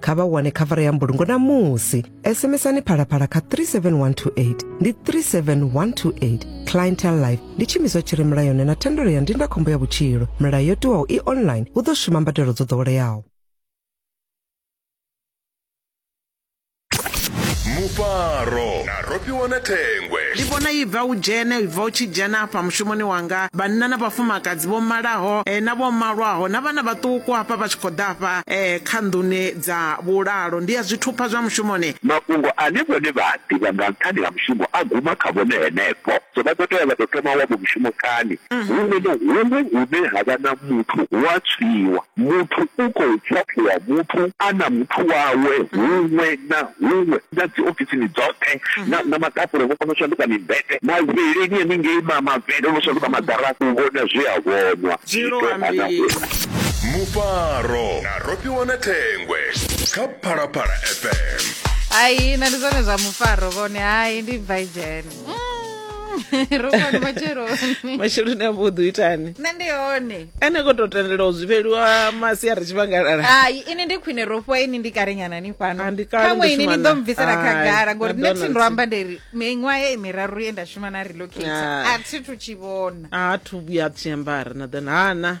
kha vha wane khavara ya mbulungo na musi sms-ani phalaphala kha 37128 ndi 37128 clientel life ndi tshimiswa tshi re mulayoni na thendelo ya ndindakhombo ya vhutshilo milayo yo tiwaho i online hu ḓo shuma mbadelo dzo ḓoweleaho mufaro na Ro fhiwa na thengwe. Ndi vhona i bva u dzhene, i bva u tshi dzhena hafha mushumoni wanga, vhanna na vhafumakadzi vho malaho na vho malwaho na vhana vhaṱuku hafha vha tshi khou ḓa hafha kha nḓuni dza vhulalo. Ndi a zwi thupha zwa mushumoni. Mafhungo ane vhone vha a ḓivha nga nṱhani ha mushumo a guma kha vhone henefho. So vha ḓo tea vha tou thoma wa vho mushumo kani. Huṅwe na huṅwe hune ha vha na muthu hu a tswiwa. Muthu u khou tswaṱhiwa muthu a na muthu wawe huṅwe na huṅwe. na dzi ofisini dzoṱhe mhm. na na maḓapule vho kona u shanduka mimbete mavheleni henengei ma mavhele no shanduka maḓara u vhona zwi a vhonwa mufaro na rofhiwa na thengwe kha phalaphala fm hai na ndi zwone zwa mufaro vhone hai ndi bva idzhene rufani matsheloni masheloni a vhuḓi u itani nṋe ndi hone ene ko to tendela u zwifheliwa masi a ri tshivhangalala hai ini ndi khwine ro fhiwa ini ndi kalenyana ni fhano Ah, ndi kale khaṅwe ndo ini ni shumana. ḓo mbvisela Hai, khagala ngori na nṋe thi ndo Donaldson. amba nderi miṅwaha ye miraru ye nda shuma na relocate Ah. a thi thu tshi vhona a thu vhuya a tshiambara na ḓana hana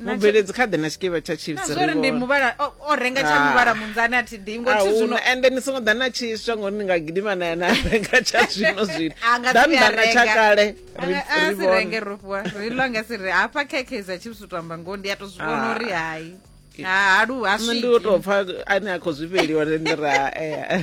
mubveledzi kha ḓe na tshikevha tsha chipsori ndi muvhala o renga tsha ah. muvhala munzani a thi ḓingo thi zwino ende ni songo ḓa na tshiswa ngori ni nga gidima na na renga tsha zwino zwino dan dana tsha kale ri ri renge rufwa ri lo nga si ri hafha khekhe za chips utamba ngo ndi a to zwi vhona ah. uri hayi ha lu ha swi ndi u to pfa ane a khou zwi fheliwa ndi ra eh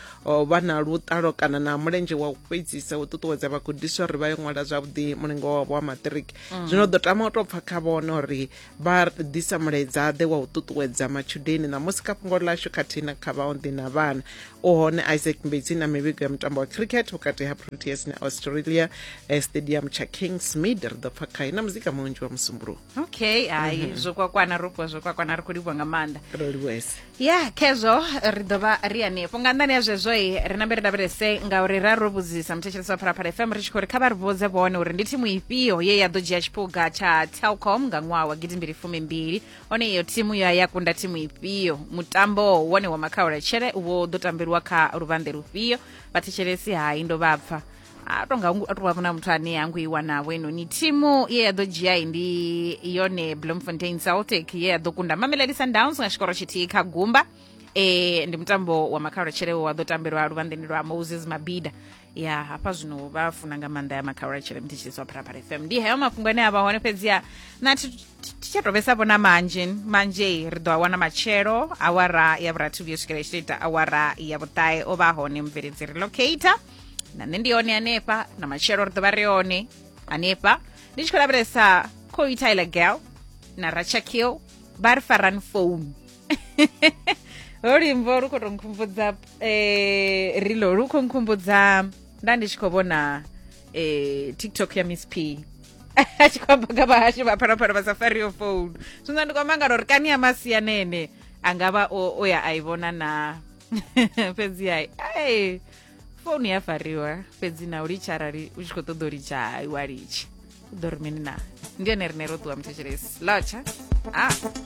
o vha na luṱalo kana na mulenzhe wa u fhedzisa u ṱuṱuwedza vhagudiswa uri vha yo ṅwala zwavhuḓi mulingo wavho wa maṱiriki mm. zwino ḓo tama u tou pfa kha vhona uri vha ḓisa mulaedza ḓe wa u ṱuṱuwedza matshudeni ṋamusi kha fhungo ḽashu khathihi na kha vhaonḓi na vhana u hone isaac mbedzi na mivhigo ya mutambo wa cricket vhukati ha proteas na australia eh, stadium tsha kings mid ri ḓo pfa khae na muzika munzhi wa musumbuluwo okay hai mm -hmm. zwo kwakwana ro fhiwa zwo kwakwana ri khou livhuwa nga maanḓa ro livhuwese ya khezwo ri ḓo vha ri hanefho nga nḓani ya zwezwo i ri nambe ri lavhelese ngauri ra ro vhudzisa muthetshelesi wa phalaphala fm ri tshi khou ri kha vha ri vhudze vhone uri ndi thimu ifhio ye ya ḓo dzhia tshiphuga tsha telcom nga ṅwaha wa gidi mbili fumi mbili one iyo thimu ya ya kunda thimu ifhio mutambo wone wa makhauletshele wo ḓo tambeliwa kha luvhanḓe lufhio vhathetshelesi hai ndo vha pfa a to nga a to vha vhona muthu ane a ngo i wanavho inoni thimu ye ya ḓo dzhia ndi yone bloemfontein celtic ye ya ḓo kunda mamelodi sundowns nga tshikoro tshithihi kha gumba e ndi mutambo wa makhaulotshele wa ḓo tambelwa luvhanḓeni lwa moses mabida ya hafha zwino vha funa nga maanḓa ya makhaulotshele mthetshelisi wa pharapara fm ndi heyo mafhungo ane a vha hone fhedziha na thi tsha to vhesa vhona manzhe manzhe ri ḓo a wana matshelo awara ya vhurathu vhuyo swikela i tshi to ita awara ya vhuṱae o vha hone mubveledzi relocator na nṋe ndi hone hanefha na matshelo ri ḓovha ri hone hanefha ndi tshi khou lavhelesa coy tyler girl na rachakill vha ri farani founu luimbo lu khou to nkhumbudza eh, rilo lu khou nkhumbudza nda ndi tshi khou vhona eh, tiktok ya miss p a tshi khou amba nga vhahashu vha phanaphanha vha sa fariho founu zwino ndi khou amba ngalo uri kani ya masianene a nga vha o, o ya a i vhona na fhedzi ai ai founu ya fariwa fhedzi na u litsha arali u tshi khou ṱoḓa u litsha hai wa litsha u ḓo ri mini na ndi ene rine ro ṱuwa muthetshelesi lotsha a